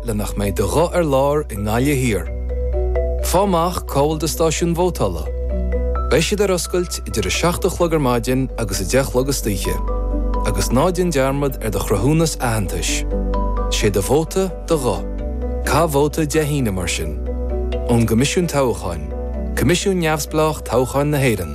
le nach mbeidh do ghuth ar lár i nGaillimh Thiar. Faigh amach cá bhfuil do stáisiún vótála. Beidh siad ar oscailt idir 7 a chlog ar maidin agus 10 a chlog istoíche. Agus ná déan dearmad ar do chruthúnas aitheantais. Sé do vóta, do ghuth. Caith vóta Dé hAoine, mar sin. Ón gCoimisiún Toghcháin, Coimisiún neamhspleách toghcháin na hÉireann.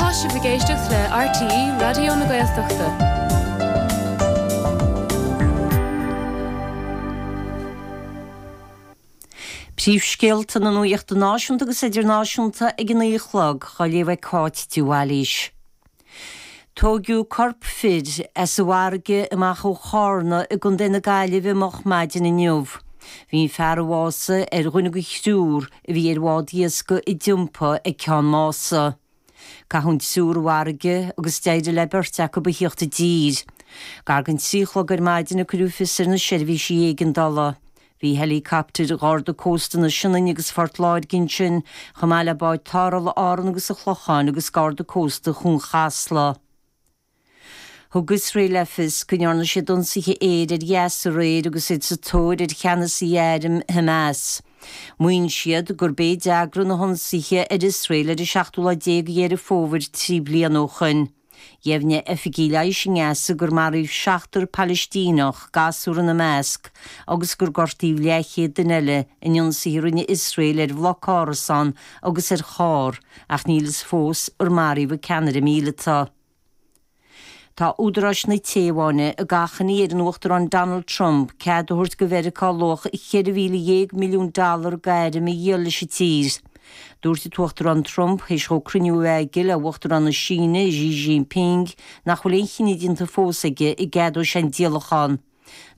Tá sibh ag éisteacht le RTÉ Raidió na Gaeltachta. Príomhscéalta na nuachta náisiúnta agus idirnáisiúnta ag an 9 a chlog, á léamh ag Cáit de Bhailís. Tóigeadh corp fir as an bhfarraige amach ó Chárna i gContae na Gaillimhe moch ar maidin inniu. Bhí an fear a bhásaigh ar dhuine de thriúr a bhí ar bhád iascaigh a d'iompaigh ag Ceann Mása. Caitheadh an triúr i bhfarraige agus d'éirigh le beirt acu a theacht i dtír. Gar don trí chlog ar maidin a cuireadh fios ar na seirbhísí éigeandála. Bhí helicoptair Gharda Cósta na Sionainne agus Phort Láirge ansin, chomh maith le báid tarrthála Árann agus an Chlocháin agus Garda Cósta Chuan Chasla. Thug Iosrael le fios go ndearna siad ionsaithe aeir ar Ghaza aréir agus iad sa tóir ar cheannasaí airm Hamas. Maíonn siad gurb é a d'eagraigh na hionsaithe ar Iosrael ar an seachtú lá de Dheireadh Fómhair trí bliana ó shoin. Dheimhnigh oifigigh leighis i nGaza gur maraíodh seachtar Palaistíneach, gasúr ina measc, agus gur gortaíodh leathchéad duine eile in ionsaithe a rinne Iosrael ar bhloc árasán agus ar charr, ach níl fhios fós ar maraíodh an ceannaire míleata. Tá údaráis na Téaváine ag achainí ar an Uachtarán Donald Trump cead a thabhairt do Mheiriceá luach 14,000 milliún dollar d'airm a dhíol leis an tír. Dúirt an tUachtarán Trump, théis dhó cruinniú a bheith aige le hUachtarán na Síne, Xi Jinping, nach bhfuil aon chinneadh déanta fós aige, an gceadóidh sé an díolachán.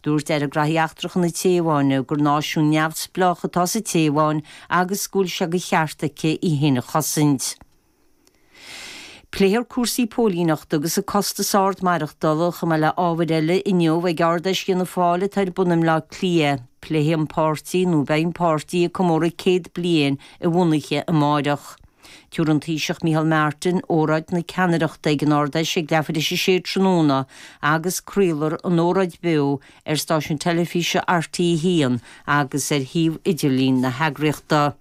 Dúirt Aire Gnóthaí Eachtracha na Téaváine gur náisiún neamhspleách atá sa Téaváin agus go bhfuil sé de cheart aici í féin a chosaint. Pléifear cúrsaí póilíneachta agus an costas ard maireachtála, chomh maith le hábhair eile, inniu ag Ard Fheis Fhianna Fáil atá ar bun i mBleá Cliath. Pléifidh an páirtí, nó beidh an páirtí ag comóradh céad bliain a bhunaithe amáireach. Tabharfaidh an Taoiseach Micheál Martin óráid na ceannaireachta ag an Ard Fheis ag leathuair théis a sé tráthnóna agus craolfar an óráid beo ar stáisiún teilifíse RTÉ 1 agus ar shuíomh idirlín na heagraíochta.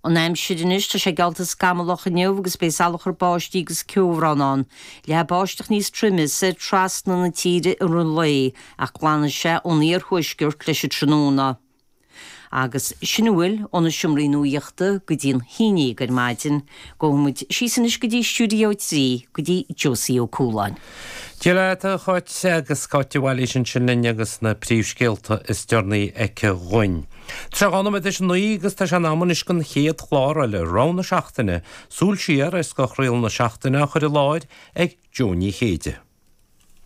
An aimsir anois, tá sé geallta scamallach inniu agus beidh salachar báistí agus ceobhrán ann, leathfaidh báisteach níos troime soir trasna na tíre i rith an lae ach glanfaidh sé ón iarthuaisceart leis an tráthnóna. Agus sin a bhfuil againn ó na seomraí nuachta go dtí a haon déag ar maidin. Gabhfaidh muid síos anois go dtí Studio 3, go dtí Josie Ó Cualáin. Go díreach é a Cháit agus Cáit de Bhailís ansin linn agus na príomhscéalta is deireanaí aici dhuinn. Trí dhá nóiméad théis a naoi agus tá sé in am anois don chéad chlár eile, Rogha na Seachtaine, súil siar ar scothchraoladh na seachtaine á chur i láthair ag Neasa Ní Chéide.